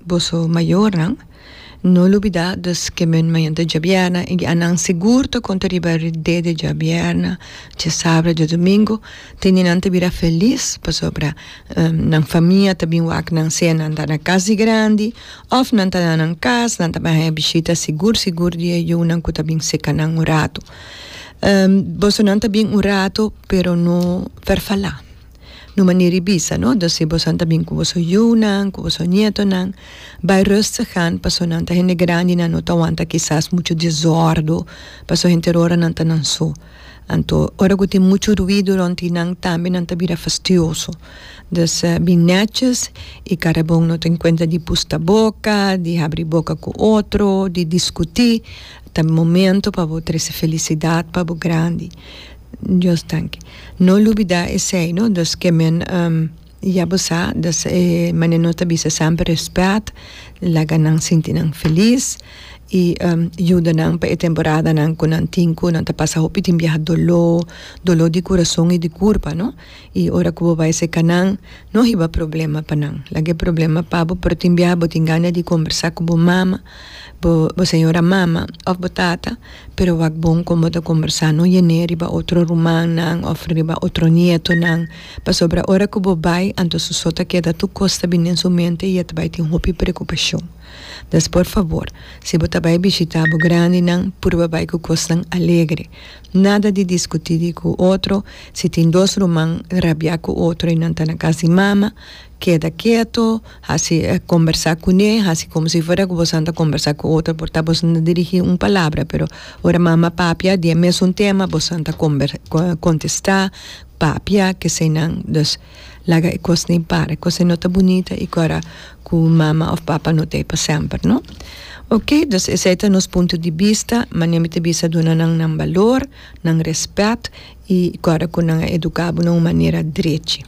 Boso mayornan, no lubidá dus kemen mañana ta djabièrna i guianan sigur ta konta riba ridé di djabièrna, djasabra, djadumingu. Teninan ta bira felis pasobra nan famia ta bin wak nan sea nan ta na kas di grandi òf nan ta na nan kas, nan ta bin haña bishita sigur sigur di e yunan ku ta bin seka nan un ratu. Bosonan ta bin un ratu pero no farfalá. na un manera di bisa, no? Entonces si boso ta bin cu boso yunan, cu boso nietonan, bay rustig aan, pasobra nan ta hende grandi, nan no ta wanta kisas mucho desordo, pasobra henter hora nan ta nan so. Anto ora cu tin mucho ruido rond nan tambe nan ta bira fastioso. Dus bin neches y cara bon no ta en cuenta di pusta boca, di habri boca cu otro, di discuti, ta momento pa bo trece felicidad pa bo grandi. Dios tanki. No lubidá esei, no, dus ke men ya bo sa, dus e manera no ta bisa esei amper rèspèt, laga nan sinti nan felis i yuda nan pa e temporadanan ku nan tin ku nan ta pasa hopi tin biaha doló, doló di kurason i di kurpa, no. I ora ku bo bai seka nan, no hiba problema pa nan. Laga e problema pa bo, pero tin biaha bo tin gana di kombersá ku bo mama, bo bo señora mama òf bo tata, pero wak bon kon bo ta kombersá. No yen'é riba otro rumannan òf riba otro nietonan, pasobra ora ku bo bai anto su so ta keda tur kos ta bini den su mente i e ta bai tin hopi prekupashon. Des por fabor, si bo ta bai bishitá bo grandinan, purba bai ku kosnan alegre. Nada di diskutí di ku otro, si tin dos ruman rabiá ku otro i nan ta na kas di mama, keda keto, hasi kombersá kuné, hasi komo si fuera ku bosan ta kombersá ku otro por ta bosan ta dirigí un palabra pero ora mama papia di e mesun tema bosan ta kontestá, papia, keseinan. Laga e kos nei para. E kos ei no ta bunita i ku ara ku mama òf papa no ta ei pa semper, no? Ok, dus esei ta nos punto di bista, manera mi ta bisa duna nan nan balor, nan rèspèt i ku ara ku nan a eduká bo na un manera drechi.